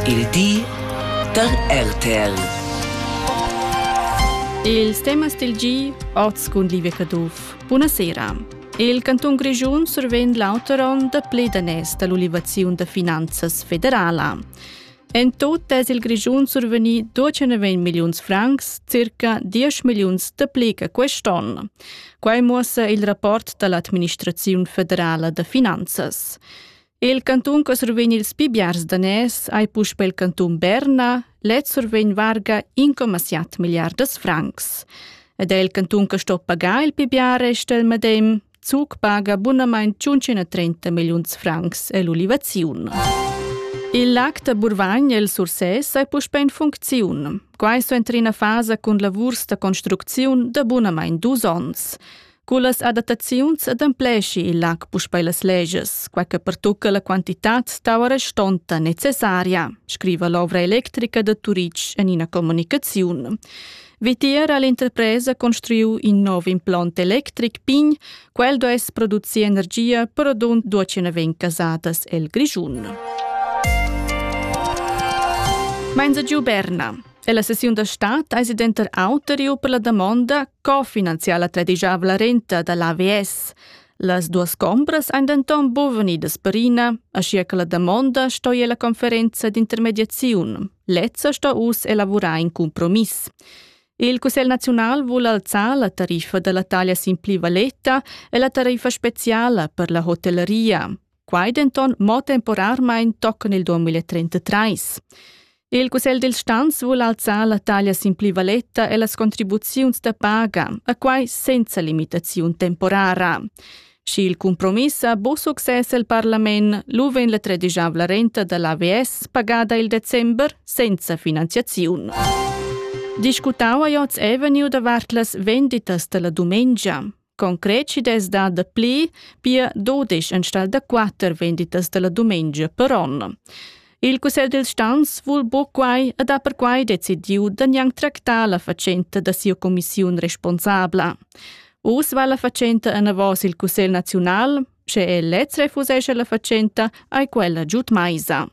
Il di da RTL. Ils temas del gi oz cun Livia Caduff. Buonasera. Il cantun Grischun survegn l'auter onn da ple danès dall'ulivaziun da finanzas federala. En tot es il Grischun survegni 290 milliuns francs, circa 10 milliuns da pli che quest'onn. Quai muossa il rapport dall'administraziun federala da finanzas. Il cantun che survegn ils pi biars daners ei puspei il cantun Berna, lez survegn varga 1,7 milliardas francs. Ed è il cantun che sto pagar il pi bia resta il medem, Zug paga bunamain 530 milliuns francs e l'ulivaziun. Il lac da Burvagn e il Sursès è puspè in funcziun. Quai so entra ina fasa cun lavurs da construcziun da bunamain dus onns. Cullas adattaziuns adempleschi il lac puspei las legias, quei che pertucca la quantitad d'aua restonta necessaria, scriva l'ovra electrica da Turitg en ina comunicaziun. Vitier ha l'interpresa construiu in nov implont electric pign, quel duess producir energia per adun duacenaven casadas el Grischun. Menza giu Berna. E la sessiun da stat eis denter auteriu per la damonda Co finanziar la tredigiavla renta da l'AVS? Las duas chombras ein denton bovenidas perina, aschia che la damonda sto ir alla conferenza d'intermediaziun. Lezza sto uss elavurar in compromiss. Il Cussegl naziunal vuol alzar la tariffa dalla taglia sin pli valeta e la tariffa speciala per la hotelleria. Quai denton mo temporarmein toccon il 2033. Il Cussegl dil Stanz vul alzar la taglia sin plivaletta e las contribuziuns da paga, a quai senza limitaziun temporara. Schi il compromiss ha bu success el parlament, lu vegn la tredisavla renta dall'AVS pagada il december senza finanziaziun. Discutau a Joz Avenue davart las venditas dalla dumengia. Concret chi dess dar dapli, pia dudesch enstagl da quatter venditas dalla dumengia per on. Il cussegl dils stans vul buca quai ed ha perquai decidiu da gnanc tractar la fatschenta da sia commissiun responsabla. Uss va la fatschenta enavos il cussegl naziunal, sche el lez refusesce la fatschenta, ai quella giud maisa.